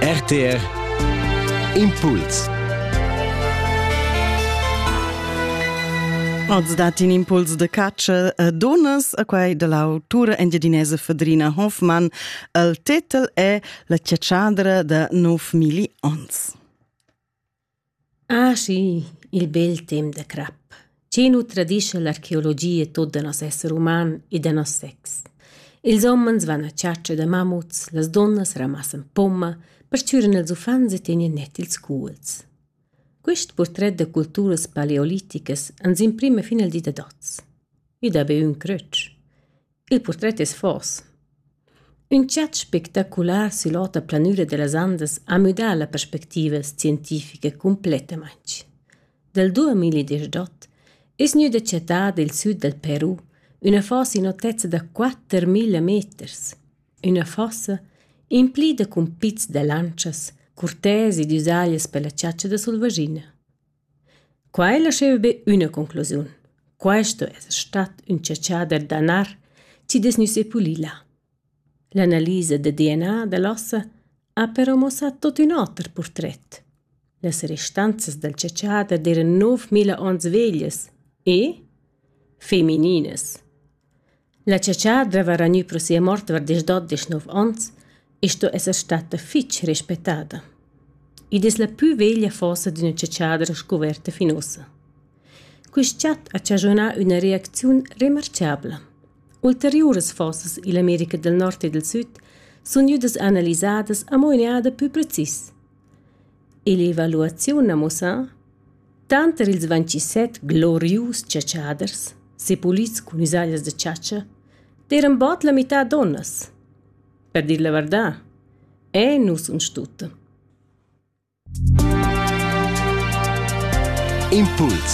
RTR Impuls Oz dat in impuls de catscha a donas a quai de l'autura engiadinesa Fedrina Hoffmann. Il tetel è La ciatschadra da 9 milli ons. Ah schi, il bel temp da crap. Chi nu tradischa l'archeologia tuot da nos esser uman e da nos sex. Ils homens van a chatscha da mammuts, las dunnas ramassan pomma, perchüran ils uffants e tegnan net ils cuolls. Quist purtret da culturas paleoliticas ans imprima fin al di da hoz. I dà be ün crötsch. Il purtret es fors. Ün chat spectacular süll'ota planüra da las Andas ha müdà la perspectiva scientifica cumplettamaing. Dal 2018 es gnüda chattada i'l süd dal Peru üna fossa in otezza da 4000 meters. Üna fossa implida cun pizs da lantschas, curtesi ed üsaglias pella chatscha da sulvaschina. Quai lascheva be üna conclusiun. Questo es stat ün chatschader da nar chi'd es gnü sepulì là. L'analisa da DNA da l'ossa ha però muossà tuot ün oter purtret. Las restanzas dal chatschader d'eiran 9000 ons veglias e femininas. La chatscha dreva ragnü pro sia mort dvar deschdot deschnov ons e sto esser statta fich respettada. Id es la pü veglia fossa d'üna chatschadra scuverta fin ussa. Quist chat ha chaschunà üna reacziun remarchabla. Ulteriuras fossas ill'America del Nord e del Süd sun gnüdas analisadas amo in eada pü precis. Ill'evaluaziun ha muossà, tanter ils vintisset glorius chatschaders, sepulids cun isaglias da chatscha, d'eiran bod la mità dunnas. Per dir la vardà, eh nus uns tutta. Impuls